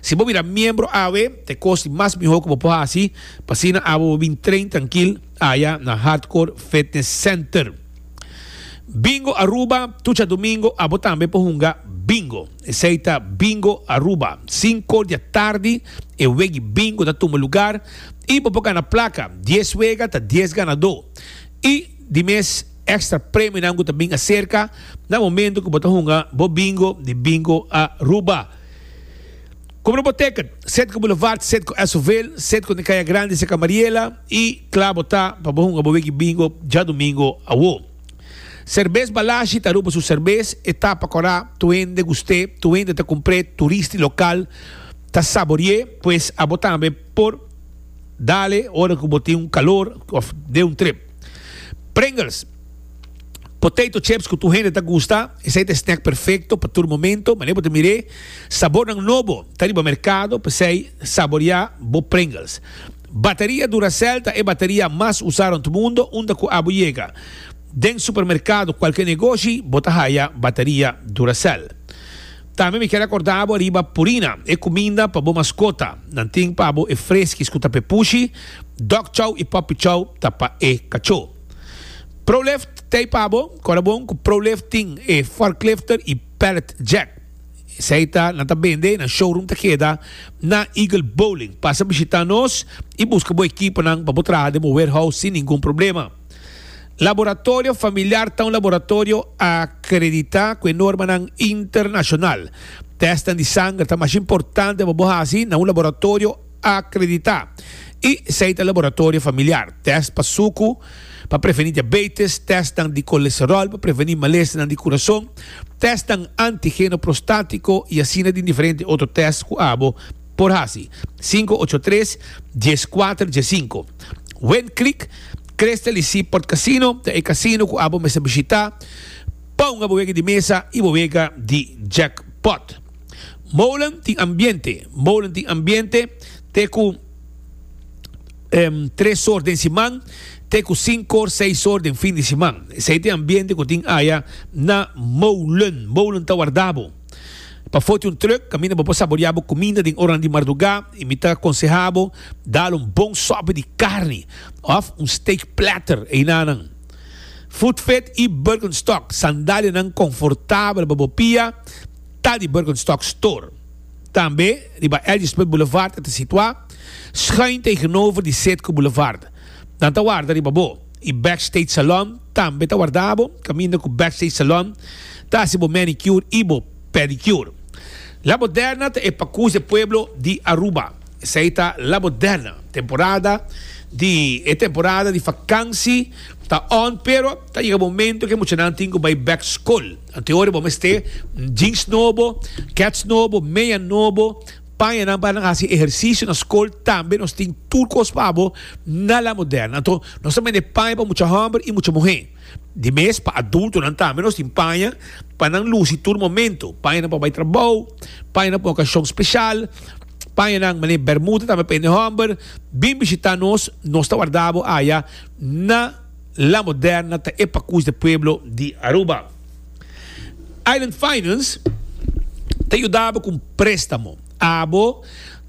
Si bo bira miembro awe, ta e kos di mas mihó ku bo por hasi pa asina abo bo bin train trankil aya na Hardcore Fitness Center. Bingo Aruba, Tur dja domingo abo tambe por hunga Bingo. Esei ta Bingo Aruba. Sinko di atardi e wegi Bingo ta tuma lugar i bo por gana plaka. Dies wega ta dies ganadó. I di mes èkstra premionan ku ta bin aserka na momentu ku bo ta hunga bo Bingo di Bingo Aruba. Como no bo teken, set cu Boulevard, set cu Esoville, set cu den Caya Grande cerca Mariela y cla bo ta pa bo hunga bo wiki bingo djadomingo awo. Cervez Balashi ta ruba su cervez, e ta pa cora tur hende gust'e, tur hende ta cumpr'e, turista y local ta sabori'e, pues abo tambe por dale ora cu bo tin un calor of den un trip. Pringles. Potato chips cu tur hende ta gusta. Esey ta e snack perfecto pa tur momento. Mane bo ta mir'é? Sabornan nobo ta riba mercado, p'esey saboria bo Pringles. Bateria Duracell ta e bateria mas usá rond mundo unda cu abo yega. Den supermercado cualkier negoshi bo ta haya bateria Duracell. Tambe mi kier acorda bo riba Purina, e cuminda pa bo mascota. Nan tin pa abo e freskis cu ta p'e pushi. Dog Chow y Puppy Chow ta pa e cachó. Prolift tei pa bo kora bon ku Prolift tin e forklifter i pallet jack. Esei ta nan ta bende nan showroom ta keda na Eagle Bowling. Pasa bishita nos i buska bo ekiponan pa bo traha den bo warehouse sin ningun problema. Laboratorio Familiar ta un laboratorio akreditá ku e normanan internashonal. Tèstnan di sanger ta mas importante pa bo hasi na un laboratorio. akreditá i esei ta laboratorio familiar, tèst pa suku pa prevení diabeitis, tèstnan di kolesteròl pa prevení malesnan di kurason, tèstnan antigeno prostátiko i asina den diferente otro tèst ku abo por hasi. Sinku ocho tres, dies kuater, dies sinku. Wen Creek, Crystal i Seaport Casino ta e kasino ku abo mester bishitá pa un abo wega di mesa i bo wega di jackpot. Molen tin ambiente. Molen tin ambiente te ku tres or den siman te ku sinku or, seis or den fin di siman. Esei te ambiente ku tin aya na molen. Molen ta warda bo pa for di un trùk kaminda bo por saboreá bo kuminda den oranan di mardugá. I mi ta konsehá bo dal un bon sòpè di karni òf un steak platter einanan. Foodfit i Birkenstock, sandalianan konfortabel pa bo pia. ta di Birkenstock Store. Tambe riba Elgerspoort Boulevard e ta situa, schuin tegenover di Setco Boulevard. Nan ta warda riba bo y Backstage Salon tambe ta warda bo, caminda cu Backstage Salon ta haci bo manicure y bo pedicure. La Moderna ta e pacus de pueblo di Aruba. Esey ta La Moderna. Temporada di e temporada di vakansi ta on pero ta yega momento cu e muchanan tin cu bay bek school. Antehoren bo mester jeans nobo, kets nobo, meya nobo, pañanan pa nan hasi ehersisio na skol. Tambe nos tin tur kos pa bo na La Moderna. Anto nos ta bende paña pa mucha hòmber i mucha muhé. Di mes pa adultonan tambe nos tin paña pa nan lusi tur momento. Pañanan pa bai trabou, pañanan pa un okashon speshal, pañanan manera bèrmuda tambe pa hende hòmber. Bin bishitá nos, nos ta warda bo aya na. La Moderna ta e pakus di pueblo di Aruba. Island Finance ta yudabo ku un prestamo. Abo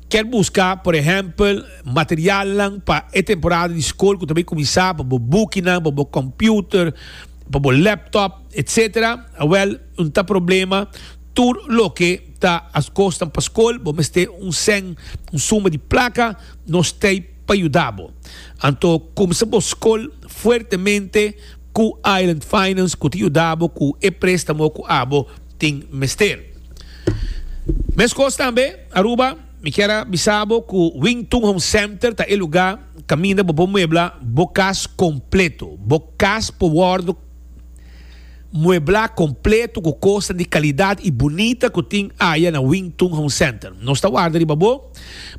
kier buska, por ehempel, materialnan pa e temporada di skol ku ta bai kuminsá, pa bo bukinan, pa bo kòmpiuter, pa bo lèptòp, etc. Awèl, no ta problema. Tur loke ta askosnan pa skol, bo mester un sèn, un suma di plaka, nos tèip. pa yuda bo. Anto kumsa bo skol fuertemente ku Island Finance ku ta yuda bo ku e préstamo ku abo tin mester. Meskos tambe Aruba, mi kier a bisa bo ku Wington Home Center ta e lugá kaminda bo por muebla bo kas kompleto. Bo kas por wòrdu. mueblá kompleto ku kosnan di kalidat i bunita ku tin aya na Wing Tun Home Center. Nos ta warda riba bo.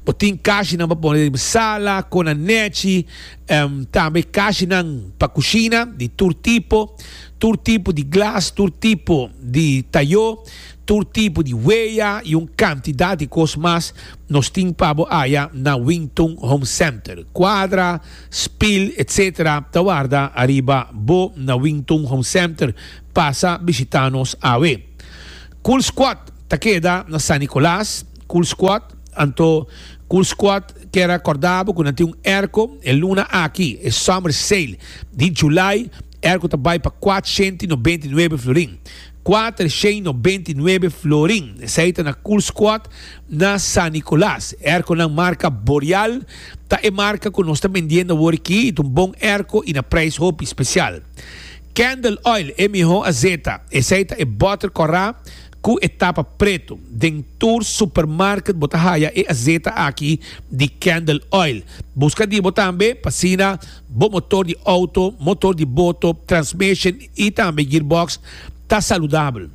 Bo tin kashinan pa pone den sala, kona nèchi, em, tambe kashinan pa kushina di tur tipo, tur tipo di glas, tur tipo di tayó, tur tipo di weya i un kantidat di kos mas nos tin pa bo aya na Wing Tun Home Center. Kuadra. Spil etc. Ta warda ariba bo na Wington Home Center. Pasa bishita nos awe. Cool Squad ta keda na San Nicolas. Cool Squad, anto Cool Squad kier a corda bo cu nan tin un erco e luna aki, e Summer Sale di July. Er ku ta bai pa kuatshentu i nobenta i nuebe florin. Kuater shen i nobenta i nuebe florin. Esei ta na Kulskuad, na San Nikolas. Erko nan marka Boreal ta e marka ku nos ta mendiendo awor aki. I ta un bon erko i na preis hopi spesial. Candle Oil, e miho azeta. Esei ta e botter kòrá ku e tapa pretu. Den tur supermarket bo ta haya e azeta aki di Candle Oil. Buska di bo tambe pa asina Bo motor di outo, motor di boto, transmission y tambe gearbox ta saludabel.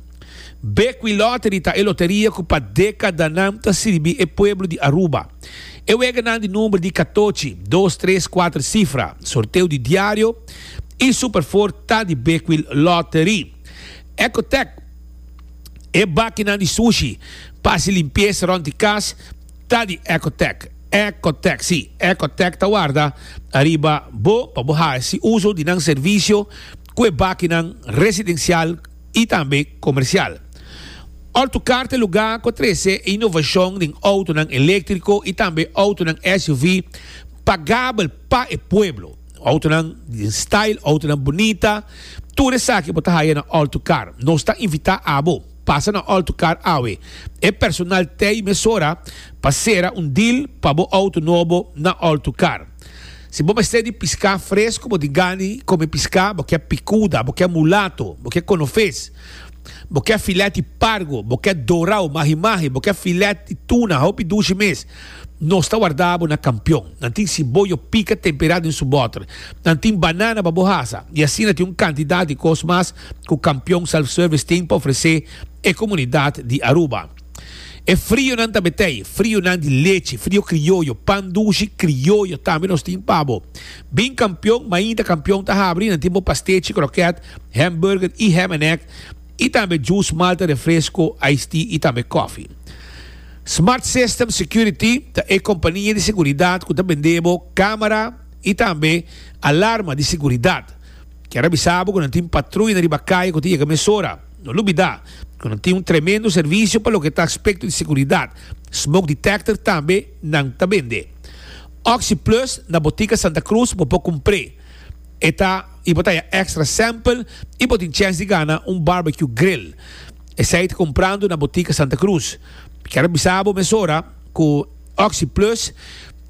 Bequi Lottery ta e loteria cu pa decadanan ta sirbi e pueblo di Aruba. E weganan di number di catochi, dos, tres, cuater cifra, sorteo di diario y Super Four ta di Bequi Lottery. Ecotec, e bakinan di sushi, pa haci limpieza rond di cas, Ta di Ecotec, Ecotec, si, Ecotec ta warda ariba bo pa bo hasi uso di nan servisio ku e bakinan residensial i tambe komersial. Autocar ta e lugá ku a trese e inovashon den outonan eléktriko i tambe outonan SUV pagabel pa e pueblo. Outonan den style, outonan bunita, tur esaki bo ta haya na Autocar. Nos ta invitá abo. pasa na alto kar awe. E personal tei mesora pa sera un deal pa bo auto nobo na alto kar. Si bo mester di piská fresco bo di gani kome piská bo ke pikuda, bo ke mulato, bo ke konofes, bo ke filèt di pargo, bo ke dorao mahi mahi, bo ke filèt di tuna hopi dushi mes, nos ta warda bo na kampion. Nan tin siboyo pika temperá den su bòter. Nan tin banana pa bo hasa i asina tin un kantidat di kos mas cu Campeon Self Service tin pa ofrece e comunidad di Aruba. E frionan ta betey, frionan di lechi, frio crioyo, pan dushi crioyo tambe nos tin pa bo. Bin Campeon, mainta Campeon ta habri, nan tin bo pastechi, croquet, hamburger y ham and egg, y tambe juice, malta, refresco, iced tea y tambe coffee. Smart System Security ta e compania di seguridad cu ta bende bo camera y tambe alarma di seguridad. Kier a bisa bo ku nan tin patruya riba kaya ku ta yega mesora. No lubidá ku nan tin un tremendo servisio pa loke ta aspekto di sekuridat, smoke detector tambe nan ta bende. Oxi Plus na Botika Santa Cruz bo por kumpr'é. E ta y bo ta haya extra sample y bo tin chèns di gana un barbecue grill. Esei ta kumprando na Botika Santa Cruz. Kier a bisa bo mesora ku Oxi Plus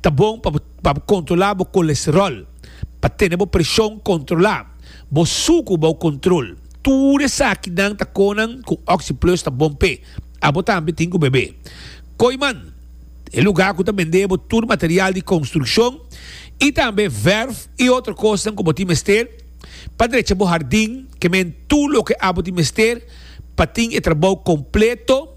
ta bon pa bo. Pa bo kontrolá bo kolesteròl. Pa tene bo preshon kontrolá. Bo suku bou kontrol. Tur esakinan ta konan ku Oxyplus ta bon p'e. Abo tambe tin ku bebe. Kooiman, e lugá ku ta bend'é bo tur material di konstrukshon i tambe vèrf i otro kosnan ku bo tin mester pa drecha bo hardin. Kemen tur loke abo tin mester pa tin e trabou kompleto.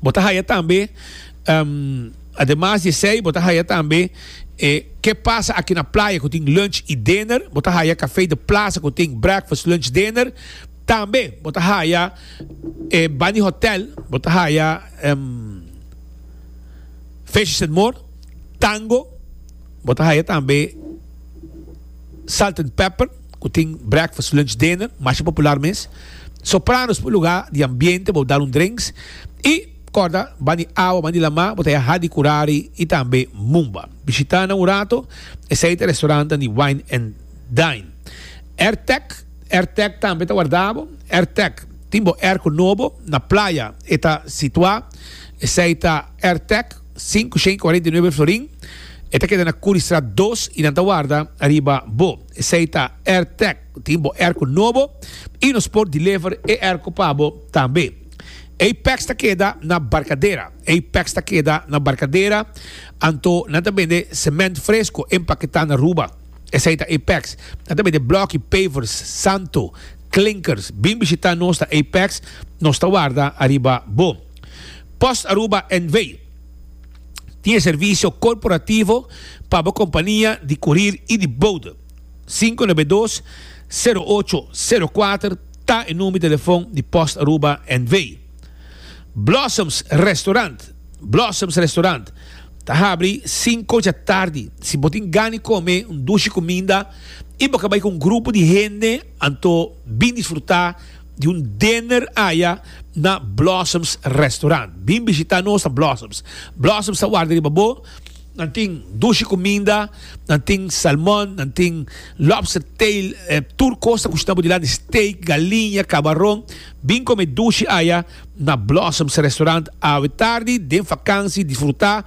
bo ta haya tambe, ademas di esey, bo ta haya tambe Ke Pasa Aki na Playa ku tin lunch i dinner, bo ta haya Kafei de Plasa ku tin breakfast, lunch, dinner, tambe bo ta haya e Bani Hotel, bo ta haya Fishes and More, Tango, bo ta haya tambe Salt and Pepper. ku tin breakfast, lunch, dinner, masha popular mes, sopranos pa un lugá di ambiente pa bo dal un drenks i kòrda ban di awa, ban di lamá bo ta yaha di Kurari i tambe Mumba. Bishitá nan un rato, esei ta restaurantnan di wine and dine. Airtec, Airtec tambe ta warda bo, Airtec tin bo erko nobo na playa e ta situá, esei ta Airtec sinku shen kuarenta i nuebe florin, e ta keda na Curriestraat dos i nan ta warda riba bo. Esei ta Airtec. Bo tin bo airco nobo y nos por deliver e airco pa bo tambe. Ei packs ta keda na Barcadera. Ei packs ta keda na Barcadera anto nan ta bende cement fresco empaqueta na Aruba. Esei ta ei packs. Nan ta bende bloki, pavers, santo, clinkers. Bin bishita nos na ei packs. Nos ta warda ariba bo. Post Aruba NV. tin e servisio korporativo pa bo kompania di kurir i di boude. Sinku na be dos, sero ocho, sero kuater ta e number di telefon di Post Aruba NV. Blossoms Restaurant Blossoms Restaurant ta habri sinku dja tardi. Si bo tin gan di kome un dushi kuminda i bo ka bai ku un grupo di hende, anto bin disfrutá. di un dinner aya na Blossoms Restaurant. Bin bishita nos na Blossoms. Blossoms ta warda riba bo. Nan tin dushi cuminda, nan tin salmon, nan tin lobster tail, tur cos ta cushina bo dilanti, steak, galiña, cabaron. Bin come dushi aya na Blossoms Restaurant awe tardi, den vakansi, disfruta.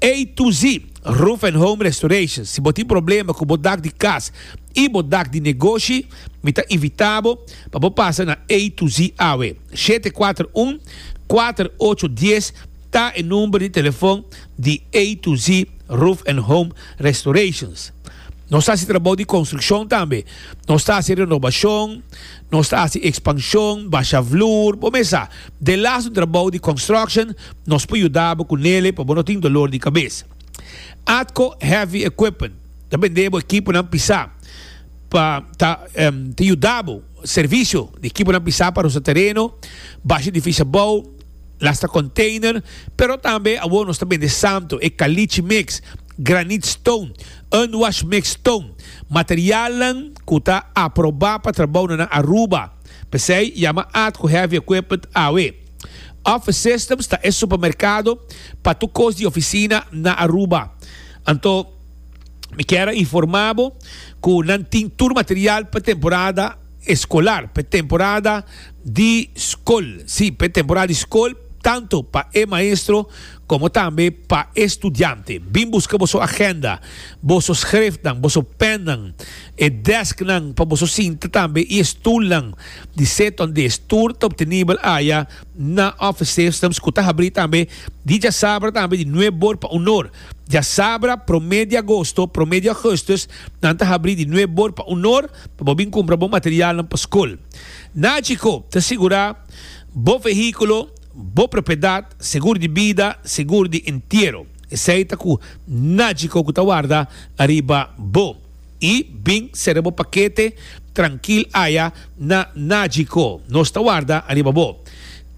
A to Z, Roof and Home Restoration, si bo tin problema ku bo dak di kas i bo dak di negoshi, mi ta invitá bo pa bo pasa na A to Z awe. Shete kuater un, kuater ocho dies ta e number di telefon di A to Z, Roof and Home Restorations. Nos ta hasi trabou di konstrukshon tambe. Nos ta hasi renobashon. Nos ta hasi expansion, basha vloer, bo mes sa, den las un trabou di construction, nos por yuda bo cu nele pa bo no tin dolor di cabes. Atco Heavy Equipment ta bende bo ekiponan pisa pa ta ta yuda bo servicio di ekiponan pisa pa rusta tereno, basha edificio abou, lasta container, pero tambe awor nos ta bende santo, e caliche mix. granite stone, unwashed mixed stone, materialnan cu ta aproba pa trabounan na Aruba, p'esey yama at cu heavy equipment awe. Office Systems ta e supermercado pa tur cos di oficina na Aruba. Anto mi kier a informa bo cu nan tin tur material p'e temporada escolar, p'e temporada di scol, si, p'e temporada di scol, tanto pa e maestro, Komo tambe pa e studiante. Bin buska boso agenda, boso skrefnan, boso pènnan, e dèsknan pa boso sinta tambe i e stulnan di seton di e stoer ta obtenibel aya na officesystems ku ta habrí tambe di djasabra tambe di nuebe bor pa un or. Djasabra promé di agosto, promé di augustus nan ta habrí di nuebe bor pa un or pa bo bin kumpra bo materialnan pa skol. Nagico ta sigurá bo vehíkulo. Bo propiedat, seguro di bida, seguro di entiero, esei ta cu najico cu ta warda ariba bo, y bin cera bo paquete trankil aya na najico nos ta warda ariba bo.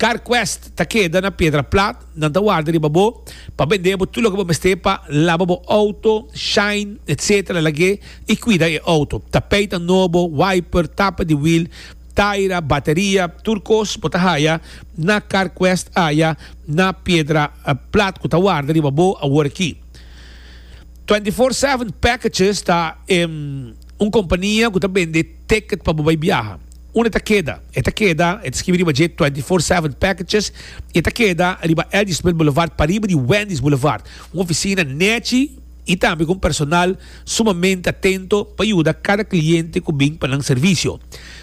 Carquest ta keda na piedra plat, nan ta warda riba bo pa bende bo tur loke bo mester pa laba bo auto, shine, etc. Lag'e y cuida e auto, tapeta nobo, wiper, tapa di wiel, Taira, bateria, tur kos bo ta haya na Carquest aya na piedra plat ku ta warda riba bo awor aki. Twenty Four Seven Packages ta un kompania ku ta bende ticket pa bo bai biaha. Un e ta keda? E ta keda, e ta skibi riba dje Twenty Four Seven Packages i e ta keda riba Eldersmith Boulevard pariba di Wendy's Boulevard, un ofisina nèchi. y tambe cu un personal sumamente atento pa yuda cada cliente cu bin pa nan servicio.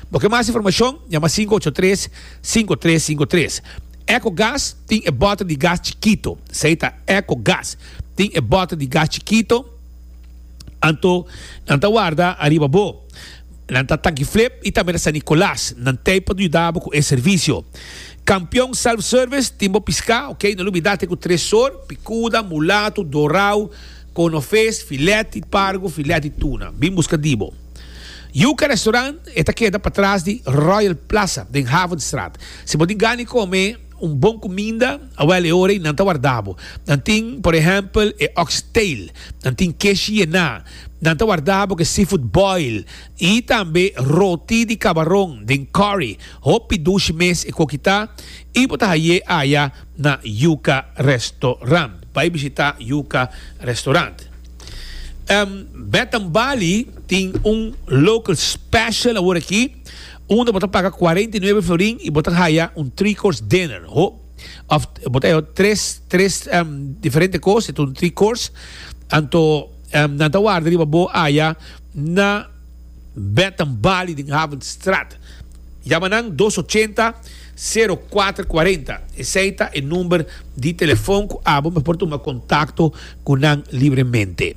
Bo kier mas informacion? Yama sinku ocho tres, sinku tres sinku tres. Echo Gas tin e bota di gas chikito. Esey ta Echo Gas. Tin e bota di gas chikito anto nan ta warda ariba bo. Nan ta Tanki Flip y tambe ta San Nicolas. Nan tey pa yuda bo cu e servicio. Campeon Self Service tin bo pisca, ok. No lo bida te cu tres sor, picuda, mulato, dorao, cono vis, filet di pargo, filet di tuna. Bin busca di bo. Yuca Restaurant e ta keda patras di Royal Plaza den Havenstraat. Si bo tin gana come un bon cuminda, awel e ora y nan ta warda bo. Nan tin, por ehempel, e ox tail. Nan tin keshi yená. Nan ta warda bo ke seafood boil i tambe roti di kabaron den curry. Hopi dushi mes e ko kita i bo ta haye aya na Yuka Restaurant. Bai bishita Yuka Restaurant. Bed and Bali tin un local special awor aki unda bo ta paga cuarenta y nueve florin i bo ta haya un three course dinner. Ho of bo ta haya tres tres diferente kos, e ta un three course. Anto. Nan ta warda riba bo aya na Betten Bali den Havenstraat. Yama nan dos ochenta, sero kuater kuarenta. Esei ta e number di telefon ku abo mester por tuma kontakto ku nan libremente.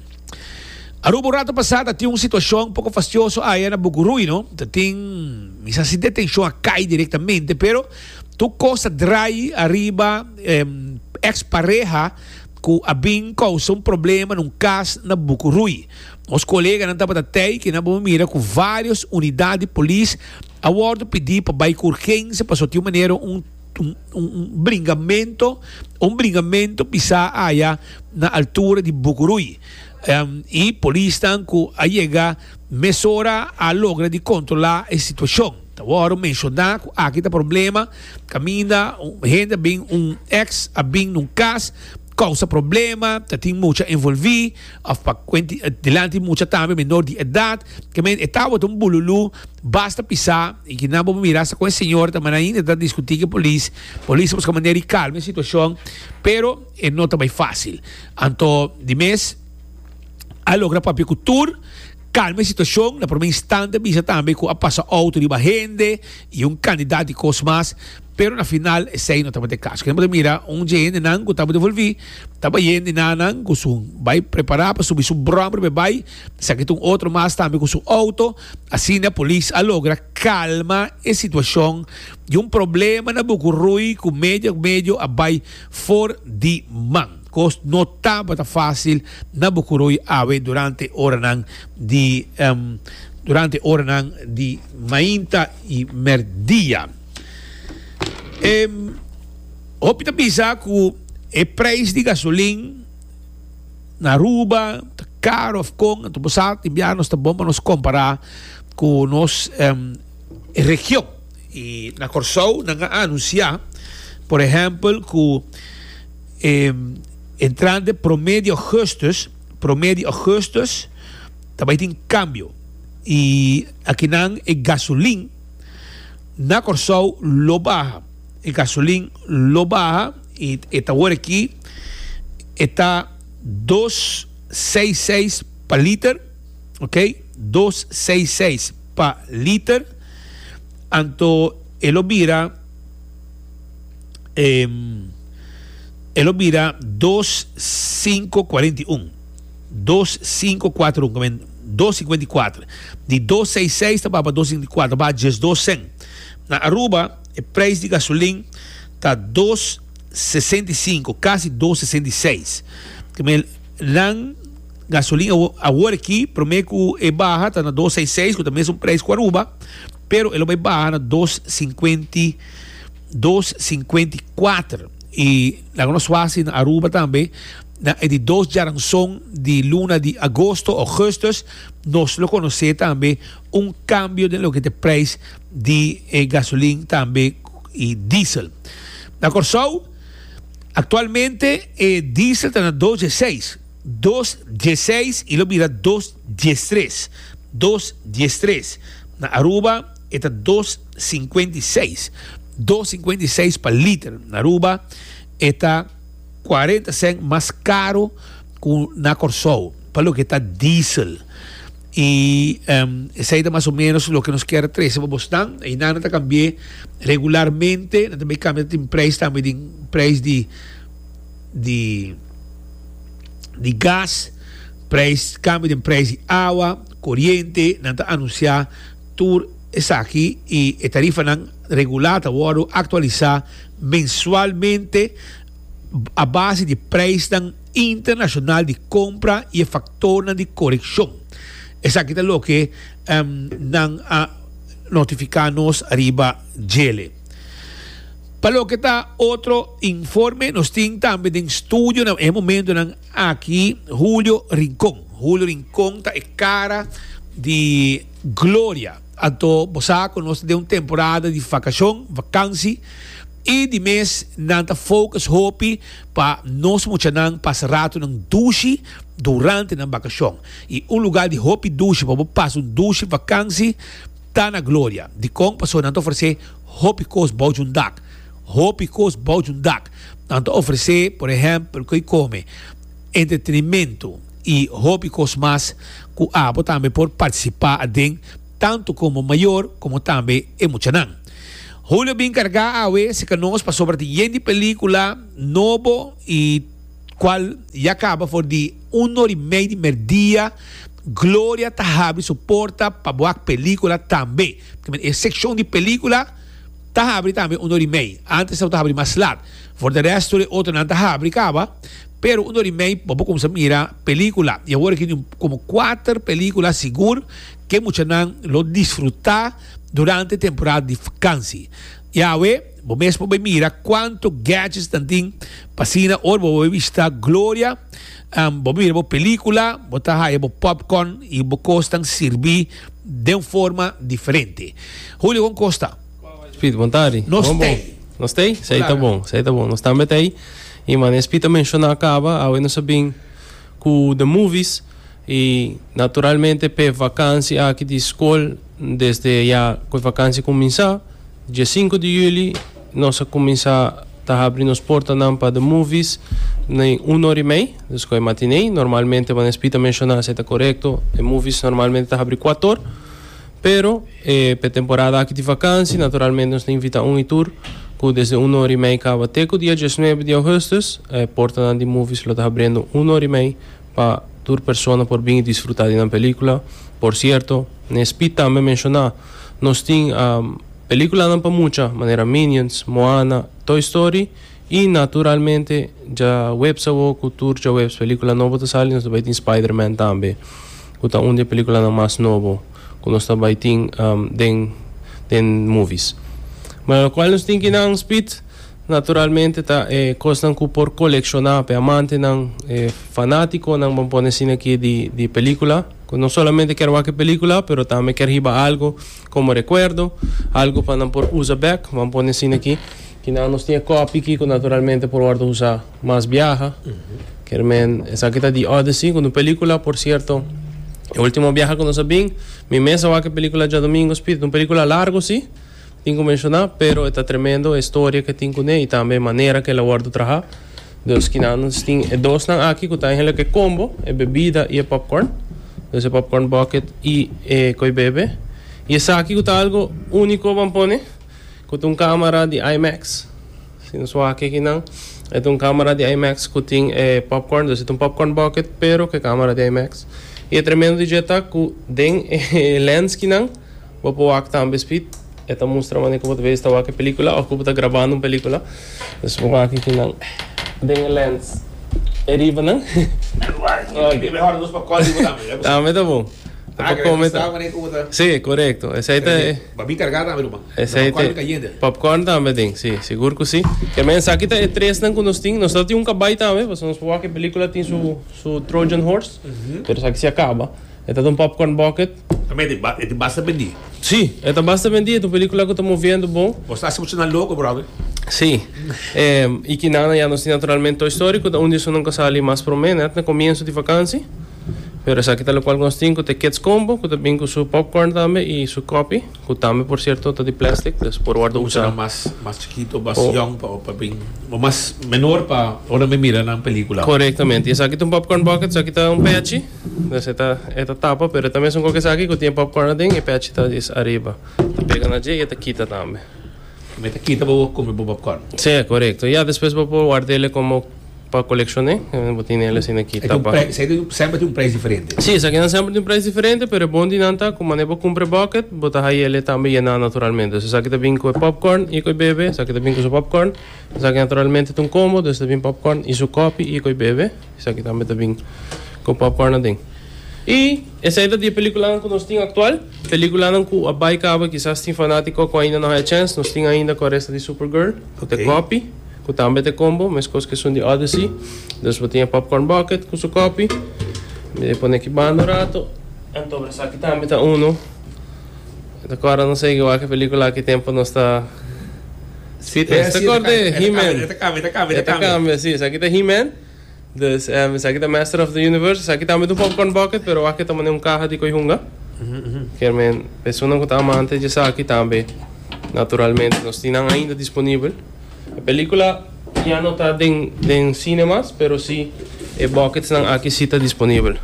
Aruba un rato pasá ta tin un situashon poko fastioso aya na Bukurui, no? Ta tin, misa si detenshon a kai direktamente, pero tur kos ta drai ariba e eks pareha. ku a bin kousa un problema na un kas na Bukuruy. Nos koleganan tabata tei ke nan bo mira ku vários unidat di polis a wòrdu pidi pa bai ku urgensia pasobra tin un manera un un bringamentu o un bringamentu bisa aya na altura di Bukuruy i polisnan ku a yega mesora a logra di kontrolá e situashon. Ta wòrdu menshoná ku aki ta problema kaminda un hende a bin un èks a bin na un kas kousa problema, ta tin mucha envolví òf pa kuenti dilanti mucha tambe menor di edat. Kèmen e tabata un bululú basta pisá i kinan bo mira sa kon e señor ta manera ainda e ta diskutí ku e polis. Polis a buska manera di kalma e situashon pero e no ta bai fásil. Anto di mes a logra papia ku tur. Kalma e situashon, na prome instante bisa tambe ku a pasa outo riba hende i un kandidat di kos mas, pero na final esei no tabata e kaso. Kende bo ta mira, un dje hendenan ku tabata volví tabata hende nanan ku su bai prepará pa subi su bròm riba e bai, esaki ta un otro mas tambe ku su outo. Asina polis a logra kalma e situashon di un problema na Buku Rui ku medio medio a bai for di man. Kos no tabata fásil na Bokoroi awe durante oranan di durante oranan di mainta i mèrdia. E hopi ta bisa ku e preis di gasolin na Aruba ta karo òf kon. Anto bo sa tin bia nos ta bon pa nos kompará ku nos region. I na Kòrsou nan a anunsiá por ehèmpel ku. E entrante promé di augustus, promé di augustus ta bai tin kambio i akinan e gasolin na Kòrsou lo baha, e gasolin lo baha i e ta awor aki e ta dos seis seis pa liter, ok, dos seis seis pa liter, anto e lo bira. Em, e lo bira dos sinku kuarenta i un. Dos sinku kuatru un, komen dos sikuenta i kuatru. Di dos seis seis ta baha pa dos sikuenta i kuatru, ta baha diesdos sen. Na Aruba e preis di gasolin ta dos sesenta i sinku, kasi dos sesenta i seis. Komen nan gasolin awor awor aki, promé ku e baha ta na dos seis seis, ku ta mesun preis ku Aruba, Pero e lo bai baha na dos sinkuenta i dos sinkuenta i kuater i laga nos wasi na Aruba tambe na e di dos djaranson di luna di agosto, augustus, nos lo konosé tambe un kambio den loke ta e preis di e gasolin tambe i diesel. Na Kòrsou aktualmente e diesel ta na dos dieseis, dos dieseis i lo bira dos. diestres, dos diestres. Na Aruba e ta dos sinkuenta i seis, dos sinkuenta i seis pa liter. Na Aruba e ta kuarenta sènt mas karu ku na Kòrsou pa loke ta diesel. I esei ta mas o ménos loke nos kier trese pa bosnan. Einan nan ta kambi'é regularmente, nan ta bai kambia tin preis tambe den preis di. di di gas, prijs kambio den prijs di awa, koriente, nan ta anunsiá tur esaki i e tarifanan regulá ta wòrdu aktualisá mensualmente a base di prijsnan internashonal di kompra i e faktornan di korekshon. Esaki ta loke nan a notifiká nos ariba djele. Pa loke ta otro informe nos tin tambe den studionan e momentonan aki Julio Rincon. Julio Rincon ta e cara di Gloria. Anto bo sa cu nos ta den un temporada di vacacion, vakansi, y di mes nan ta focus hopi pa nos muchanan pasa ratonan dushi durante nan bakacion. Y un lugar di hopi dushi pa bo pasa un dushi vakansi. Ta na gloria dikon pasobra nan ta ofresé hopi kos bou dje un dak. Hopi kos bou dje un dak. Nan ta ofresé, por ehèmpel, ku e kome, entretenimentu i hopi kos mas ku abo tambe por partisipá aden, tantu komo mayor komo tambe e muchanan. Julio a bin kargá awe serka nos pasobra tin yen di pelíkula nobo i. cual ya caba for di un or y mei di merdia, Gloria ta habri su porta pa bo hak pelicula tambe. Kimen e seccion di pelicula ta habri tambe un or y mei. Antes esaki ta habri mas laat. For de res tur e otronan ta habri caba, pero un or y mei bo por cuminsa mira pelicula. Y awor aki tin como cuater pelicula sigur ke muchanan lo disfruta durante temporada di vakansi. Yawe. Bo mes por bai mira cuanto gadgets nan tin, p'asina ora bo bai bishita Gloria, bo bai mira bo pelicula, bo ta haya bo popcorn y bo cos ta sirbi den forma diferente. Julio, con cos ta? Speed, bontadi. Nos Bon, bon. t'ey. Nos t'ey? Esey ta Claro. bon, esey ta bon. Nos tambe t'ey. Y manera Speed a menciona caba, awe nos a bin cu The Movies. I naturalmente p'e vakansi aki di skol desde ya ku e vakansi kuminsá, dia sinku di yuli nos a kuminsá ta habri nos portanan pa The Movies na e un ora i mei, dus ku e matinee. Normalmente manera Speed a menshoná esei ta korekto, The Movies normalmente ta habri kuator, pero p'e temporada aki di vakansi naturalmente nos ta invitá un i tur ku desde un ora i mei kaba te ku dia diesnuebe di ougùstus. E portanan di Movies lo ta habriendo un ora i mei. Pa tur persona por bini disfruta di nan pelikula. Por sierto, Nesbitt tambe menshoná, Nos tin pelikulanan pa mucha, manera Minions, Moana, Toy Story i naturalmente djaweps awor ku tur djaweps pelikula nobo ta sali nos ta bai tin Spider-Man tambe, ku ta un di e pelikulanan mas nobo ku nos ta bai tin den movies. Manera kual nos tin ki nan spit? Naturalmente ta e kosnan ku por kolekshoná pa e amantenan, e fanátikonan bo pone asina aki di pelíkula, ku no solamente kèr wak e pelíkula pero tambe kèr hiba algu komo rekuerdo, algu pa nan por usa bèk, bo a pone asina aki. Kinan nos tin e kòpi aki ku naturalmente por wòrdu usá mas biaha. Kèr men esaki ta The Odyssey, ku un pelíkula por sierto e último biaha ku nos a bin. Mi mes a wak e pelíkula djadumingu, Spiritu. Un pelíkula largu sí. Tin cu menciona, pero e ta tremendo e storia ke tin cune y tambe e manera ke el a wordo traha. Dus kinan nos tin e dosnan aki cu ta eindelijk e combo, e bebida y e popcorn. Dus e popcorn bucket y e koi bebe. Y esaki cu ta algo unico ban pone, cu ta un camera di IMAX. Si nos wak aki nan, e ta un camera di IMAX cu tin e popcorn. Dus e ta un popcorn bucket pero cu e camera di IMAX. Y e tremendo di dje ta cu den e lens kinan, Bo por wak tambe spit. E ta mustra manera ku bo ta bes ta wak e pelikula òf ku bo ta grabando un pelikula. Entonces bo maka aki nan den e lens e riba nan. Oke. Tambe ta bon. Ta por kome tambe. Si, korekto. Esei ta e. Babin kargá tambe lo ban. Esei ta. Nan popcorn kayente. Popcorn tambe aden. Si, sigur ku si. Ke men esaki ta e tres nan ku nos tin. Nos ta tin un kabai tambe pasobra nos por wak e pelikula tin su su trojan horse. Pero esaki si a kaba. E ta den un popcorn bucket. Tambe e ta e ta basta bendi? Sí, e ta basta bendi, e ta un película cu ta moviendo bon. Bo sta haci mucha nan loco, brother. Sí. Y ki nan ya nos tin naturalmente Toy Story, cu ta un di esunnan cu a sali mas prome net na comienzo di vakantie. Pero esaki ta locual cu nos tin, cu ta e Kids Combo, cu ta bin cu su popcorn tambe y su copi, cu tambe por cierto ta di plastic, dus por wordo usa. Muchanan mas, mas chikito, mas yong pa, pa bin, o mas menor pa ora men mira nan película. Corectamente. Y esaki ta un popcorn bucket, esaki ta un pechi. Nos e ta e ta tapa pero e ta mesun kok esaki ku tin e popcorn aden e pèchi ta djis ariba ta pega na dje i e ta kita tambe. Bo ta kita bo kume bo popcorn? Sí, korekto. Ya despues bo por warda ele komo pa kolekshoné. Bo tin ele asina aki tapa. Esaki tin un preis diferente? Semper tin un preis diferente? Sí, esakinan semper tin un preis diferente pero e bon di nan ta ku mane bo kumpra e bucket bo ta haña ele tambe yená naturalmente. Dus esaki ta bin ku e popcorn i ku e bebe. Esaki ta bin ku su popcorn. Esaki naturalmente ta un combo, dus ta bin popcorn i su kòpi i ku e bebe. Esaki tambe ta bin ku popcorn aden. I esei ta di e pelikulanan ku nos tin aktual. Pelikulanan ku a bai kaba kisas tin fanatiko ku ainda no haña chèns. Nos tin ainda ku a resta di Supergirl, ku ta e kòpi, ku tambe ta e kombo, meskos ku esun di Odyssey. Dus bo tin e popcorn bucket ku su kòpi. Mi pone ki banda un rato. Anto esaki tambe ta unu. Mi ta corda nos segui wak e pelicula aki tempo nos ta si ta ta corda e he man e ta cambia e ta cambia e ta cambia si esaki ta he man dus esaki ta master of the universe esaki tambe ta un popcorn bucket pero wak e ta mane un caha di coy hunga kier men personan cu ta amante di esaki tambe naturalmente nos tin nan ainda disponibel e pelicula ya no ta den den cine mas pero si e buckets nan aki si ta disponibel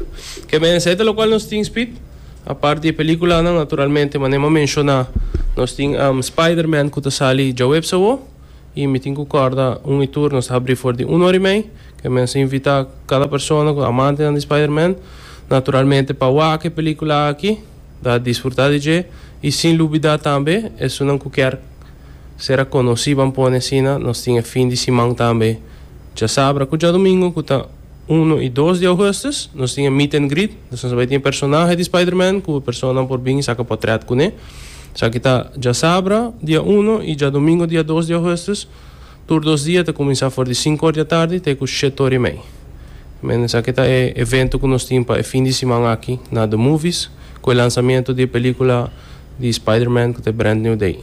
kier men esaki ta locual nos tin speed. Apart di e peliculanan naturalmente manera m'a menciona nos tin Spiderman cu ta sali djaweps awo y mi tin cu corda un y tur nos ta habri for di un ora y mei cu mi a sa invita cada persona cu ta amantenan di Spiderman naturalmente pa wak e pelicula aki ta disfruta di dje y sin lubida tambe esunnan cu kier ser a conoci ban pone asina nos tin e fin di siman tambe djasabra cu djadomingo cu ta. Uno i dos di Augustus nos tin e meet and greet, dus nos a bai tin e personahe di Spiderman ku e personanan por bin i saka potrèt kuné. Esaki ta djasabra dia uno i djadomingo dia dos di Augustus, tur dos dia ta kuminsá for di sinku or di atardi te ku shet ora i mei. Men esaki ta e evento ku nos tin pa e fin di siman aki na The Movies ku e lansamiento di e pelíkula di Spiderman ku ta e brand new day.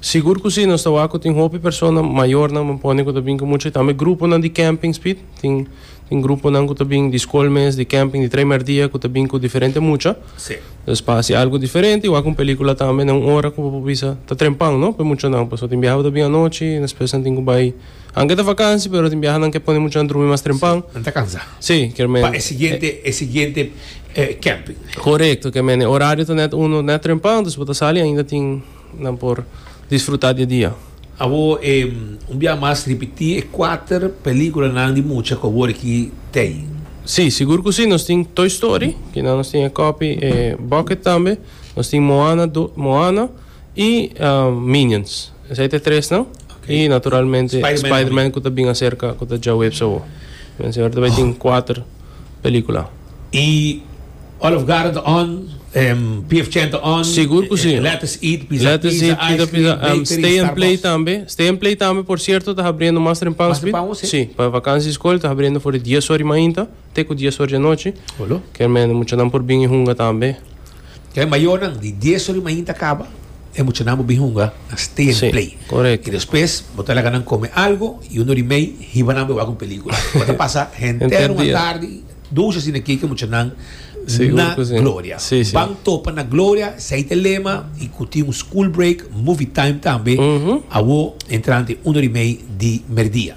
Sigur cu si, nos ta wak cu tin hopi persona mayornan bo pone cu ta bin cu mucha y tambe gruponan di campings Piet, tin tin gruponan cu ta bin di scol mes, di camping, di trei merdia cu ta bin cu diferente mucha, Sí. dus pa haci algo diferente y wak un pelicula tambe na un ora cu bo por bisa ta trempan no p'e muchanan, pasobra tin biaha cu ta bin anochi y despues nan tin cu bay, aunke ta vakansi pero tin biahanan ke pone muchanan drumi mas trempan, Nan ta cansa. sí, kier men, Pa e siguiente, e siguiente eh, camping. Corecto, kier men e horario ta net uno net trempan, dus bo ta sali ainda tin. Nan por disfruta di e dia. Abo e un bia mas ripiti e kuater pelikulanan di mucha ku abo riki t'ei. Sí, sigur ku sí, nos tin Toy Story, kinan nos tin e kopi, e bucket tambe, nos tin Moana do, Moana i Minions. Esei ta e tresnan. I naturalmente Spiderman ku ta bin aserka, ku ta djaweps awo. Mensien ora ta bai tin kuater. pelicula. Y Olive Garden ta on, PF Chang ta on. Sigur cu si. Lettuce Eat, Pizza Pizza, Ice Cream, Bakery, Starbucks. Stay and Play tambe. Stay and Play tambe por cierto ta habriendo mas tempan Mas tempan, sí. Si, pa vakantie school ta habriendo for di dies or di mainta te cu dies or di anochi. Olo. Kermende muchanan por bin y hunga tambe. Dje e mayornan di dies ori mainta kaba, e muchanan bo bin hunga na Stay and Play. I despues bo ta laga nan kome algu i unu ori mei hiba nan bo e wak un pelikula. Bo ta pasa henter un atardi dushi asina kiki e muchanan na Gloria. Ban topa na Gloria, esei ta e lema, i ku tin un school break, movie time tambe, awo entrante unu ori mei di merdia.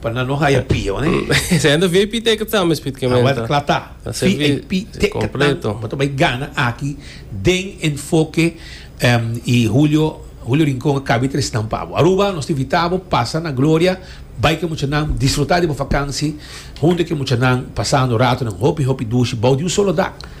Pa nan no haya pi a wani. Ese hende vip teken ta mes pit kemen ta. Awor ta kla ta. Vip teken ta nan pa ta bay gana aki den enfoke y Julio Julio Rincon a kabe tres nan pa bo. Aruba nos ta invita bo pasa na Gloria bay ke mucha nan disfruta di bo vakansi hunto ke mucha nan pasando ratonan hopi hopi dushi bou di un solo dak.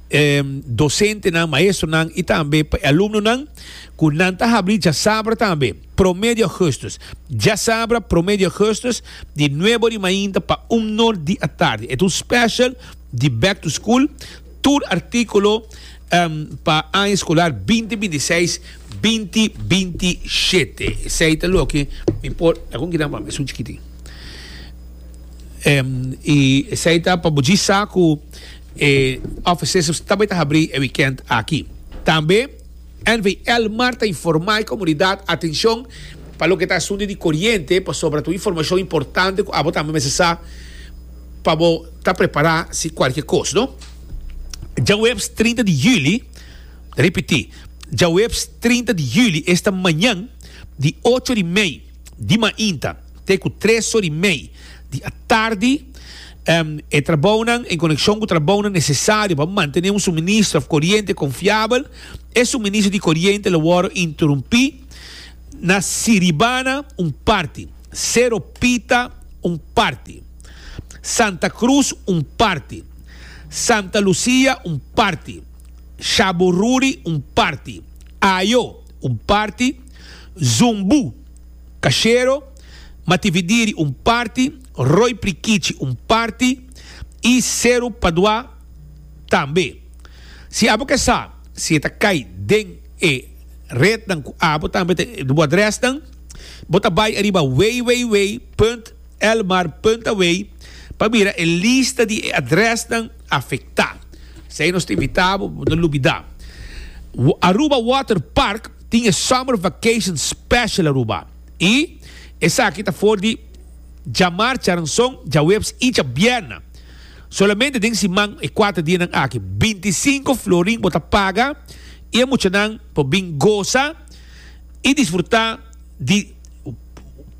e dosentenan, maestronan i tambe pa e alumnonan ku nan ta habri djasabra tambe, promé di ògùstùs. Djasabra, promé di ògùstùs, di nuebe ori mainta pa un nor di atardi. E ta un special di Back to School. Tur artíkulo pa aña skolar binti binti seis, binti binti shete. Esei ta loke mi por, laga un gitá pa mi, esun chikitin. I esei ta pa bo djisa ku. E offices ta bai ta habrí e wikènt aki. Tambe NVL mar ta informá e komunidat, Atenshon pa loke ta asuntu di koriente pasobra ta un informashon importante ku abo tambe mester sa pa bo ta prepará si kualke kos. No. Djaweps trinta di yüli, ta ripití, djaweps trinta di yüli, esta mañan, di ocho di mei di mainta te ku tres so di mei di atardi, E trabounan en konekshon ku trabounan nesesario pa mantené un suministro òf koriente konfiabel, e suministro di koriente lo wòrdu interumpí na Siribana un parti, Sero Pita un parti, Santa Krus un parti, Santa Lusia un parti, Shabururi un parti, Ayo un parti, Zumbu, Kashero, Matividiri un parti, Roy Prikichi un parti y Seru Padua tambe. Si abo ke sa si e ta kai den e rednan ku abo tambe ta e bo adresnan, bo ta bai ariba www.elmar.away pa mira e lista di e adresnan afektá. Esei nos ta invitá bo, bo no lubidá. Aruba Water Park tin e Summer Vacation Special Aruba. I esaki ta for di djamarcha ranson djaweps i djabierna. Solamente den siman e kuater dianan aki, binti i sinku florin por ta paga i e muchanan por bin gosa i disfrutá di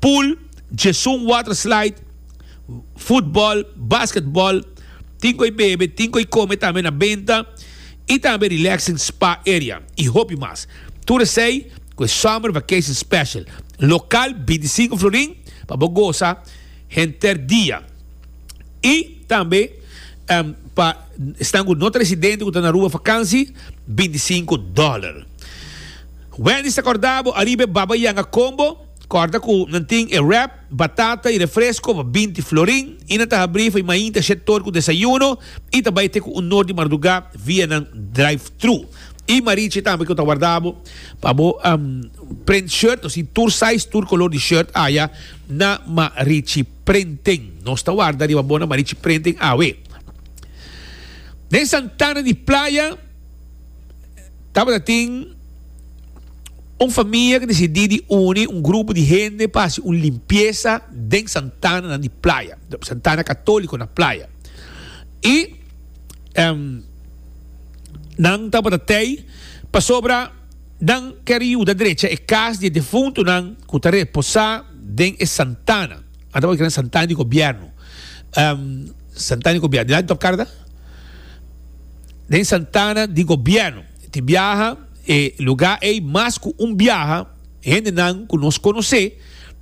pool, Jesun Water Slide, futbòl, basketbòl, tin ku e bebe, tin ku e kome tambe na benta i tambe relaxing spa area i hopi mas. Tur esey cu e Summer Vacation Special local binti sinku florin pa bo goza henter dia y tambe pa esnan cu no ta residente cu ta na Aruba vakansi binti sinku dollar. Wendy's ta cordabo ariba e Baba Yanga Combo, corda cu nan tin e wrap, Batata y refresco pa binti florin y nan ta habri fai mainta she tor cu desayuno y ta bay te cu un nor di marduga via nan drive thru. Y marichi tambe cu ta wardabo pa bo print shirt nos tin tur size tur color di shirt aya na Marichi Printing. Nos ta warda riba bo na Marichi Printing awe. Den Santana di Playa tabata tin. Un famia ke desidí di uni un grupo di hende pa hasi un limpiesa den santananan di playa, santana katóliko na playa. I nan tabata tei pasobra nan kere yuda drecha e kas di e defuntunan ku ta reposá den e santana. Nan tabata kere santana di gobièrnu, santana di gobièrnu. Di lado di Tòp Karda? Den santana di gobièrnu. Tin biaha e lugá ei mas ku un biaha. Hendenan ku nos konosé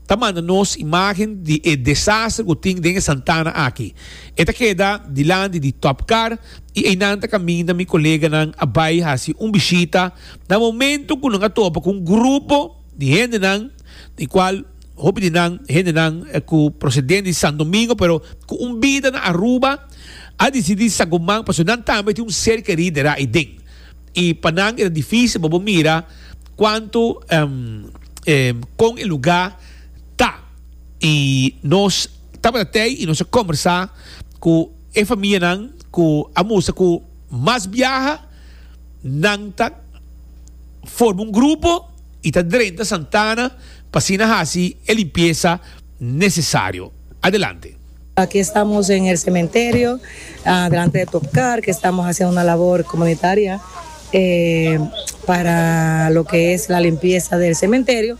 ta manda nos imágen di e desaster ku tin den e Santana aki. E ta keda dilanti di Top Car i einan ta kaminda mi koleganan a bai hasi un bishita na momentu ku nan a topa ku un grupo. di hendenan di cual hopi di nan hendenan cu procedente di Santo Domingo pero cu un bida na Aruba a dicidi sa guman pasobra nan tambe tin un ser queri dera ahi den y pa nan era dificil pa bo mira cuanto con e lugar ta y nos tabata tey y nos a conversa cu e familianan cu a mustra cu mas biaha. Nan ta forma un grupo y ta drenta Santana pa asina haci e limpieza necesario. Adelante. Aki estamos en el cementerio delante de Top Car que estamos haciendo una labor comunitaria para lo que es la limpieza del cementerio.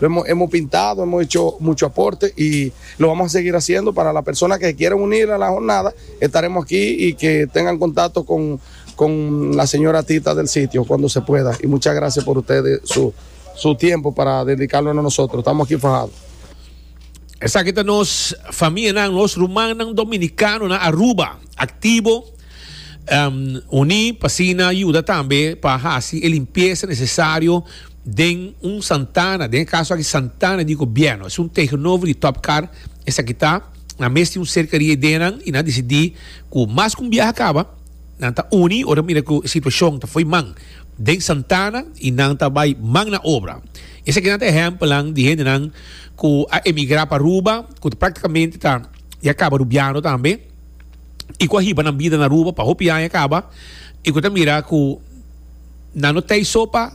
Hemo pintado, hemo hecho mucho aporte y lo vamos a seguir haciendo. Para la persona que se quieren unir a la jornada, estaremos aquí y que tengan contacto con la señora Tita del sitio cuando se pueda. Y muchas gracias por ustedes su tiempo para dedicarnos a nosotros. Estamos aquí fajados. Esaki ta nos famianan, nos rumannan dominicano na Aruba, activo, um, uní, pa asina yuda tambe pa hasi e limpieza necesario Den un santana, den e kaso aki santana di gobièrnu, es un tegenover di Top Car, esaki ta na mes tin un serka di ideanan i nan a disidí ku mas ku un biaha a kaba, nan ta uni ora nan mira ku e situashon ta fo'i man den santana i nan ta bai man na obra. Esakinan ta ehèmpelnan di hendenan ku a emigrá pa Aruba, ku ta práktikamente ta ya kaba rubiando tambe i ku a hiba nan bida na Aruba pa hopi aña kaba i ku ta mira ku, Nan no t'ei so pa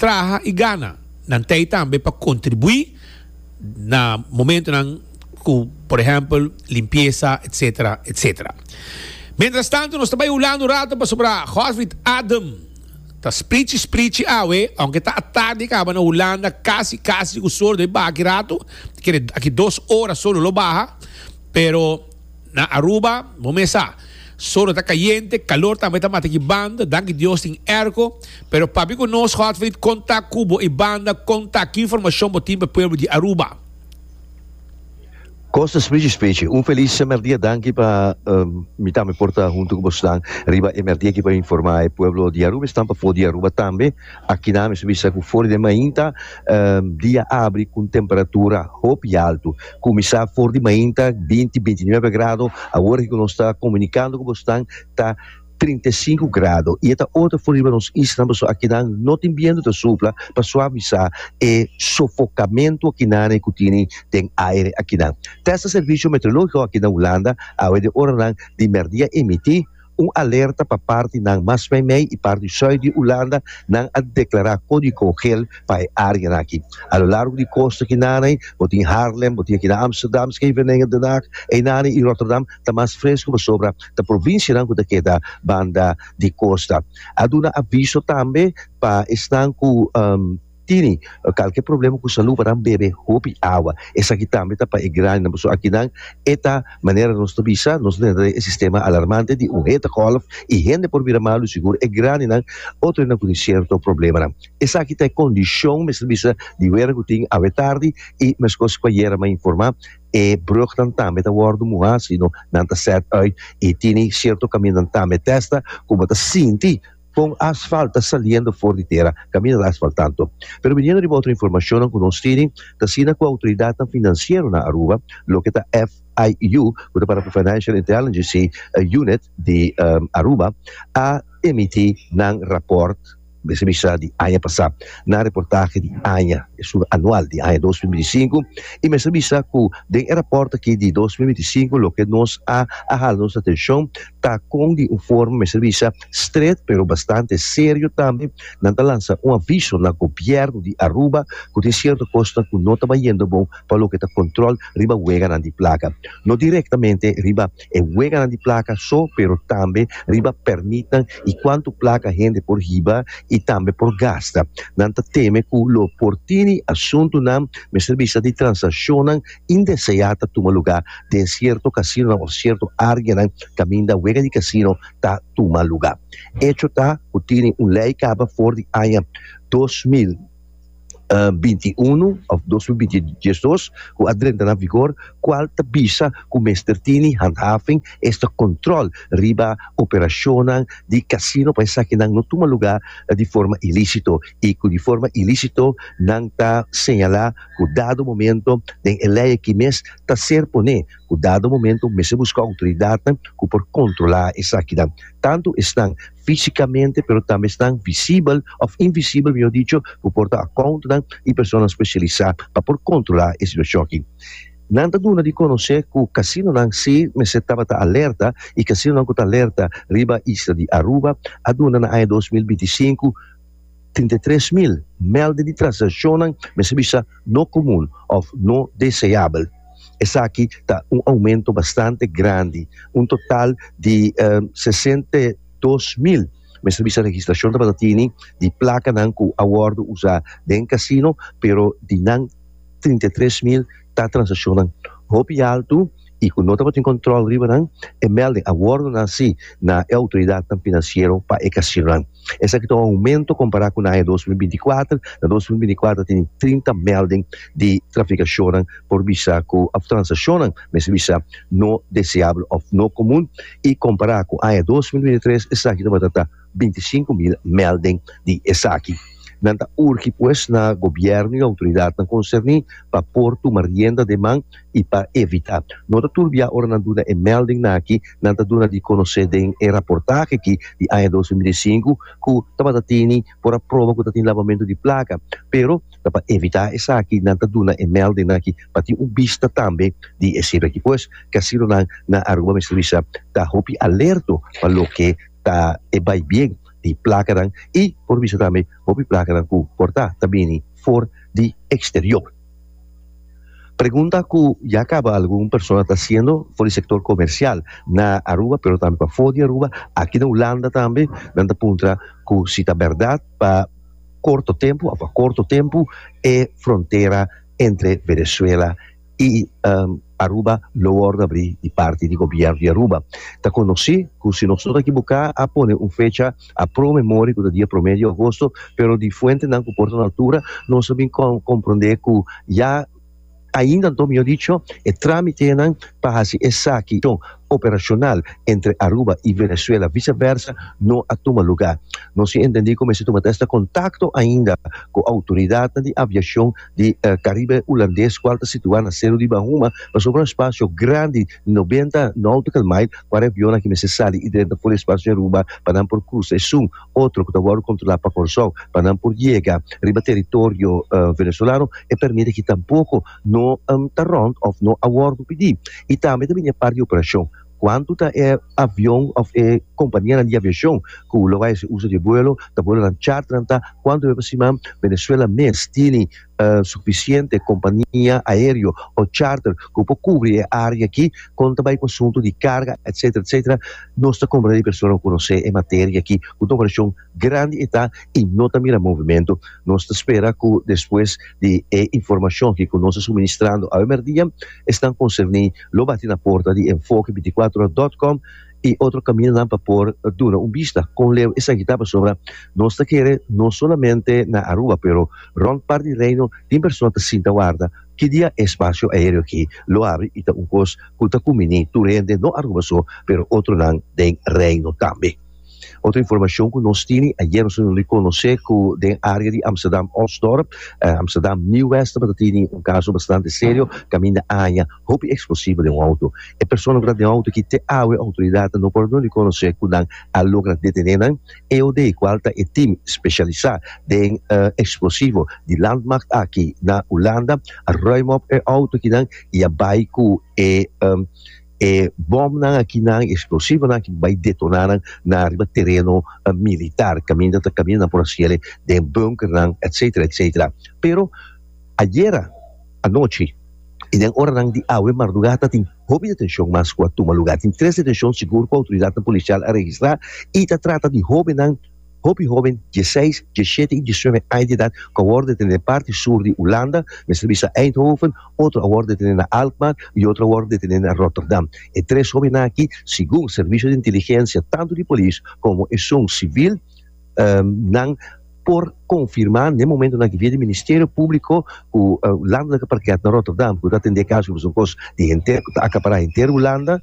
traha i gana, nan t'ei tambe pa kontribuí na momentunan ku por ehèmpel limpiesa etsetera etsetera. Miéntras tantu nos ta bai hulando un ratu pasobra Horvit Adem ta sprichi sprichi awe, ounke ta atardi kaba na Hulanda kasi kasi ku sol debí baha aki ratu, ta kere aki dos ora sol lo lo baha, pero. Na Aruba, bo mes sa, solo ta cayente, calor tambe ta mata ki banda, danki Dios tin airco, pero papi cu nos hot frit con ta cu bo y banda con ta ki informacion bo tin pa pueblo di Aruba. Kostas Bridges Pece, un felis merdia danki pa mi tambe por ta hunto ku bosnan riba e merdia aki pa informa e pueblo di Aruba esnan pa for di Aruba tambe. Akina mi su bisa ku for di mainta dia abri ku un temperatura hopi altu. Kuminsá for di mainta binti, binti nuebe grado, awor aki ku nos ta komunikando ku boso nan ta trinta i sinku grado. I e ta otro for riba nos islanan pasobra akina no tin bientu ta supla pa suavisá e sofokamentu akinane ku tene den aire akina. Tèsta Servisio Meteorológiko aki na Hulanda a habi di oranan di mèrdia emití Un alerta pa partinan mas mei mei i parti sui di Ulanda, nan a deklará kódigo geel pa e áreanan aki. A lo largo di kosta akinani, bo tin Haarlem, bo tin aki na Ámsterdam, Scheveningen, Den Haag, Einani i Rotterdam, ta mas fresku pasobra ta provinsianan ku ta keda banda di kosta. A duna aviso tambe pa esnan ku. Tini kalke problema ku salu paran bebe hopi awa esaki tambe ta pa e grandinan pasobra akinan e ta manera nos ta bisa nos ta tene e sistema alarmante di un hete gòlf i hende por bira malu sigur e grandinan otro hende ku tin sierto problemanan esaki ta e kondishon mester bisa di wera ku tin awe tardi i meskos ku ayera mi a informá e brugnan tambe ta wòrdu muhá sino nan ta sèt uit i tini sierto kamindan tambe tèsta ku bo ta sinti Con asfalt ta saliendo for di tera, camina ta asfalt tanto. Pero biniendo riba otro informacionnan cu nos tiri, ta asina cu autoridadnan financiero na Aruba, loke ta FIU, cu ta para cu Financial Intelligency Unit di Aruba, a emiti nan raport, mester bisa di aña pasa, nan reportahe di aña, e su anual di aña dos mil binti sinku, y mester bisa cu den e raport aki di dos mil binti sinku loke nos a a hala nos atencion ta con di un forma mester bisa Stret pero bastante serio tambe nan ta lansa un aviso na Gobierno di Aruba cu tin cierto cosnan cu no ta bayendo bon pa loke ta control riba weganan di placa. No directamente riba e weganan di placa so pero tambe riba permitnan y cuanto placa hende por hiba y tambe por gasta. Nan ta teme cu lo por tini asuntunan mester bisa di transaccionnan indesea ta tuma lugar den cierto casinonan of cierto areanan caminda wega di casino ta tuma lugá. Echo ta ku tini un lei kaba for di aña dos mil binti unu òf dos mil binti dos ku a drenta na vigor kual ta bisa ku mester tini handhaving esta kòntròl riba operashonnan di kasino pa esaki nan no tuma lugá di forma ilísito i ku di forma ilísito nan ta señalá ku dado momento den e lei aki mes ta ser pone Ku dado momento mester buska outoridatnan ku por kontrolá esakinan, tantu esnan físikamente pero tambe esnan visibel òf invisibel mihó dicho, ku por ta akountnan i personanan spesialisá pa por kontrolá e situashon aki. Nan ta duna di konosé ku kasinonan si mester tabata alerta i kasinonan ku ta alerta riba isla di Aruba a duna na aña dos mil binti sinku, Trinta i tres mil mèlde di transakshonan mester bisa no komun òf no deseabel. Esaki ta un oumento bastante grandi. Un total di sesenta i dos mil mester bisa registrashon tabata tini di plakanan ku a wòrdu usá den kasino, pero di nan trinta i tres mil, ta transakshonnan hopi altu i ku no tabatin kòntròl riba nan, e mèlding a wòrdu nasi na e outoridatnan finansiero pa e kasinonan. Esaki ta un oumento kompará ku na aña dos mil binti kuater. Na dos mil binti kuater a tene trinta mèlding di trafikashonnan por bisa ku òf transakshonnan mester bisa no deseabel òf no komun i kompará ku aña dos mil binti tres esaki tabata ta bintisinku mil melding di esaki. Nan ta urgi pues na Gobierno y autoridadnan concerni pa por tuma rienda de man y pa evita. No ta tur bia ora nan duna e melding nan aki, nan ta duna di conoce den e raportahe aki di aña dos mil binti sinku cu tabata tini por a proba cu ta tin lavamento di placa. Pero ta pa evita esaki nan ta duna e melding nan aki pa tin un bista tambe di e sirbi aki. Pues casinonan na Aruba mester bisa ta hopi alerto pa loke ta e bai bien di plakanan i por bisa tambe hopi plakanan ku kortá ta bini for di eksterior. Pregunta ku ya kaba algun persona ta hasiendo for di sektor komersial na Aruba pero tambe pafó di Aruba, aki na Hulanda tambe nan ta puntra ku si ta bèrdat pa korto tempu òf pa korto tempu e frontera entre Venezuela y Aruba lo worde abri di parti di gobierno di Aruba. Ta conoci cu si nos no ta ekibuca a pone un fecha a pro me mori cu ta dia prome di agosto pero di fuentenan cu por ta na altura nos a bin compronde cu ya ainda anto mijo dicho e tramitenan pa haci esaki. operacional entre Aruba y Venezuela vice versa no a tuma lugar. No sin entendi cu mester tuma testa contacto ainda cu autoridadnan di aviacion di Caribe Hulandes cual ta situa na Seru di Bahuma pasobra un espacio grandi di noventa nautical mile cu e avionnan aki mester sali y drenta for di espacio di Aruba pa nan por cruza esun otro cu ta wordo controla pa Corsou pa nan por yega riba territorio Venezuelano e permit aki tampoco no ta rond of no a wordo pidi y tambe ta bini e parti di operacion cuanto ta e avion of e companianan di aviacion cu lo bay haci uso di e vuelo ta vuelonan charternan ta cuanto ta hasi man Venezuela mes tini suficiente compania aereo o charter cu por cubri e area aki con ta bay cu asunto di carga etcetera etcetera nos ta comprende di persona cu conoce e materia aki cu ta operacion. Grandi e ta y no ta mira movimento. Nos ta spera cu despues di e informacion ki cu nos a suministrando awe merdia, esnan concerni lo bati na porta di Enfoke binticuatro ora dot com y otro caminanan pa por duna un bista con leu esaki ta pasobra nos ta kere no solamente na Aruba pero rond part di Reino tin persona ta sinta warda ki dia e espacio aereo aki lo abri y ta un cos cu ta cumbini tur hende no Aruba so pero otronan den Reino tambe. Otro informacion cu nos tini, ayer nos a duna di conoce cu den area di Amsterdam Osdorp, Amsterdam Nieuw West tabata tini un caso bastante serio caminda aña hopi explosivo den un auto. E persona cu ta den auto aki te awe e autoridadnan no por a duna di conoce cu nan a logra detene nan. EOD cual ta e team specialisa den explosivo di Landmacht aki na Hulanda a ruim op e auto akinan y a bay cu e E bòmnan aki nan, e eksplosivonan aki bai detoná nan na ariba tereno militar, kaminda ta kaminda nan por hasi el'e den bunkernan etsetera etsetera. Pero ayera anochi i den oranan di awe mardugá tatin hopi detenshon mas ku a tuma lugá. Tin tres detenshon sigur ku outoridatnan polisial a registrá i ta trata di hóbennan. Hopi hóben dieseis, dieshete i diesnuebe aña di edat ku a wòrdu detene parti sur di Hulanda, mester bisa na Eindhoven, otro a wòrdu detene na Alkmaar i otro a wòrdu detene na Rotterdam. E tres hóbennan aki, segun servisio di inteligensia tantu di polis komo esun sivil nan por konfirmá n'e momentonan aki via di ministerio públiko ku Hulanda ta parkeá na Rotterdam ku ta atendé e kaso ku pasobra son kos di henter ku ta akapará henter Hulanda.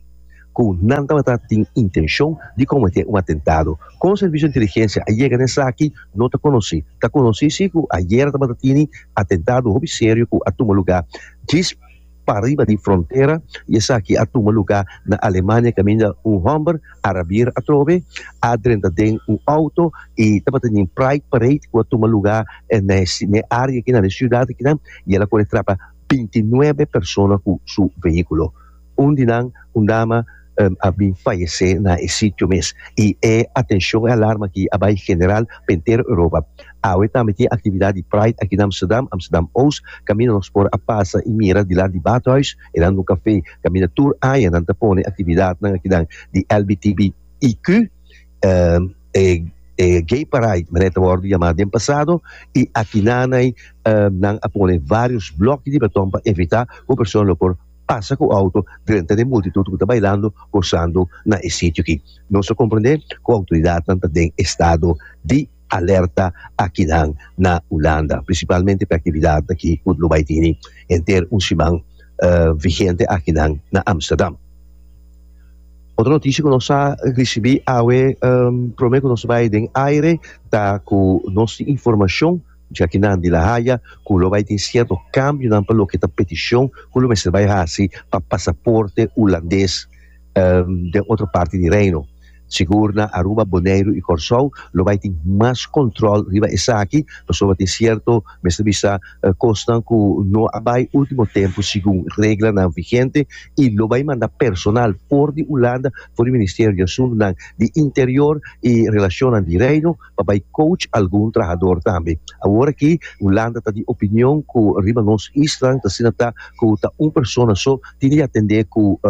ku nan tabata tin intenshon di kometé un atentado. Kon Servisio Inteligensia a yega na esaki no ta konosí. Ta konosí sí ku ayera tabata tini atentado hopi serio ku a tuma lugá djis pariba di frontera i esaki a tuma lugá na Alemania kaminda un hòmber a rabier atrobe, a drenta den un outo i tabata na e Pride Parade ku a tuma lugá na e área akinan, na e siudat akinan i el a kore trapa binti nuebe persona ku su veíkulo. Un di nan, un dama, a bin fayesé na e sitio mes, i e atenshon, e alarma aki a bai general pa entero Europa. Awe tambe tin aktividat di Pride aki na Amsterdam, Amsterdam Oost, kaminda nos por a pasa i mira di lar di Badhuis, e nan dun kafé, kaminda tur aña nan ta pone aktividatnan akinan di LBTBIQ, e e Gay Paride manera e ta wòrdu yamá den pasado, i akinanai nan a pone vários blòknan di baton pa evitá ku e persona lo por. pasa ku outo drenta den multitut ku ta bailando gosando na e sitio aki. Nos ta komprendé ku outoridatnan ta den estado di alerta akinan na Hulanda, prinsipalmente p'e aktividat aki ku lo bai tini henter un siman vigente akinan na Amsterdam. Otro notishi ku nos a risibí awe promé ku nos bai den aire ta ku nos tin informashon. Jakinan di La Haya ku lo bai tin sierto kambionan pa loke ta petishon ku lo mester bai hasi pa pasaporte Hulandes den otro parti di Reino. Sigur na Aruba, Boneiru i Kòrsou lo bai tin mas kòntròl riba esaki pasobra tin sierto, mester bisa, kosnan ku no a bai último tempu segun reglanan vigente i lo bai manda personal for di Hulanda, for di Ministerio di Asuntunan di Interior i Relashonnan di Reino, pa bai coach algun trahador tambe. Awor aki Hulanda ta di opinion cu riba nos islan ta asina ta cu ta un persona so tin di atende cu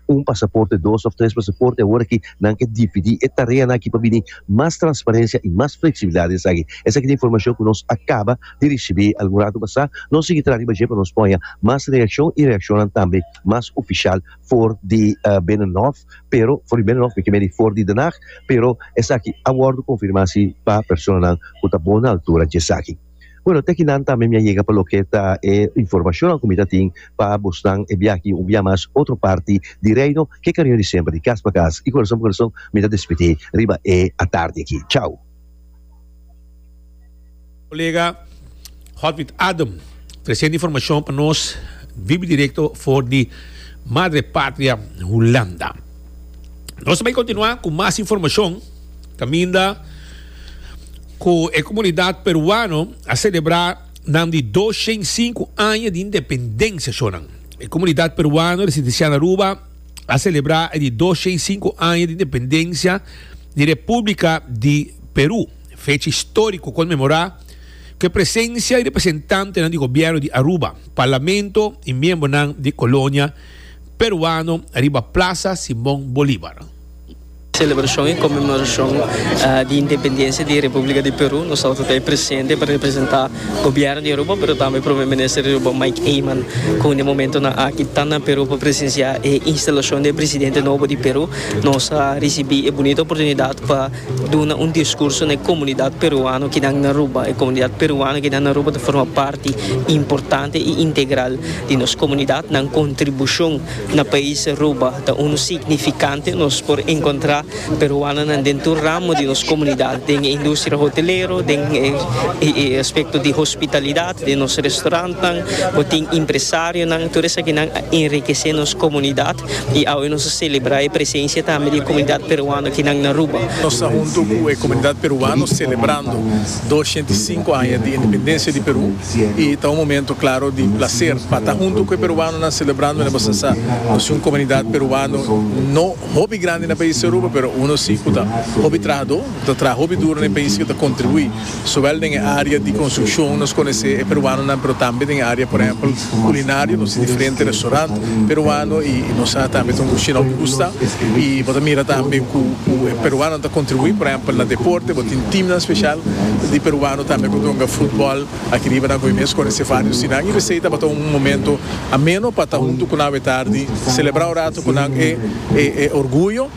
un pasaporte, dos of tres pasaporte. Awor aki nan ke dividi e tareanan aki pa bini mas transparencia y mas flexibilidad den esaki. Esaki ta informacion cu nos a caba di ricibi algun rato pasa. Nos sigui traha riba dje pa nos poña mas reaccion y reaccionnan tambe mas oficial. for di Binnenhof pero for di Binnenhof mi ke medi for di Den Haag pero esaki a wòrdu konfirmá si pa personanan ku ta bon altura dje esaki. Bueno, te akinan tambe mi a yega pa loke ta e informashonnan ku mi ta tin pa bosnan e bia aki un bia mas otro parti di Reino. Ke kariño di semper di kas pa kas i korason pa korason mi ta despidí riba e atardi aki. Chau! Colega Hotwit Adem presenta informacion pa nos vibi directo for di Madre Patria Hulanda. Nos bai continua cu mas informacion caminda cu e comunidad peruano a celebra nam di 205 aña di independencia shonan. E comunidad peruano residencial na Aruba a celebra e di 205 aña di independencia di Repúblika di Perú, fecha istóriko konmemorá ku e presensia di representantenan di gobièrnu di Aruba, parlamento i miembronan di kolonia peruano riba Plasa Simon Bolívar. Selebrashon i konmemorashon di independensia di Repúblika di Perú. Nos outo ta ahi presente pa representá gobièrnu di Aruba, pero tambe Prome Minister di Aruba, Mike Eman, ku un di e momentonan aki ta na Perú pa presensiá e instalashon di e presidente nobo di Perú, Nos a ricibi e bunita oportunidad pa duna un discurso na e comunidad peruano kinan na Aruba. E comunidad peruano kinan na Aruba ta forma parti importante y integral di nos comunidad. Nan contribucion na pais Aruba ta unu significante. Nos por encontra peruanonan den tur ramo di nos comunidad, den e industria hotelero, den e aspecto di hospitalidad, den nos restaurantnan, bo tin impresarionan. Tur esakinan a enriquece nos comunidad. y awe nos a celebra e presencia tambe di e comunidad peruano kinan na Aruba. Nos ta hunto cu e comunidad peruano celebrando dosciento y cinco aña di independencia di Peru y ta un momento claro di placer pa ta hunto cu e peruanonan celebrando ne boso sa nos tin un comunidad peruano no hopi grandi na país di Aruba pero uno si cu ta hopi trahador ta traha hopi duro na e país y ta contribui Zowel den e área di konstrukshon nos konesé e peruanonan pero tambe den e área por ehèmpel kulinario nos tin diferente restorant peruano i nos sa tambe ta un kushina ku gusta i bo ta mira tambe ku e peruanonan ta kontribuí por ehèmpel na deporte bo tin timnan speshal di peruano tambe ku ta yunga futbòl aki riba nan ku e mes konesé vários dinan i p'esei tabata un momento ameno pa ta huntu ku nan awe tardi selebrá un ratu ku nan e orguyo.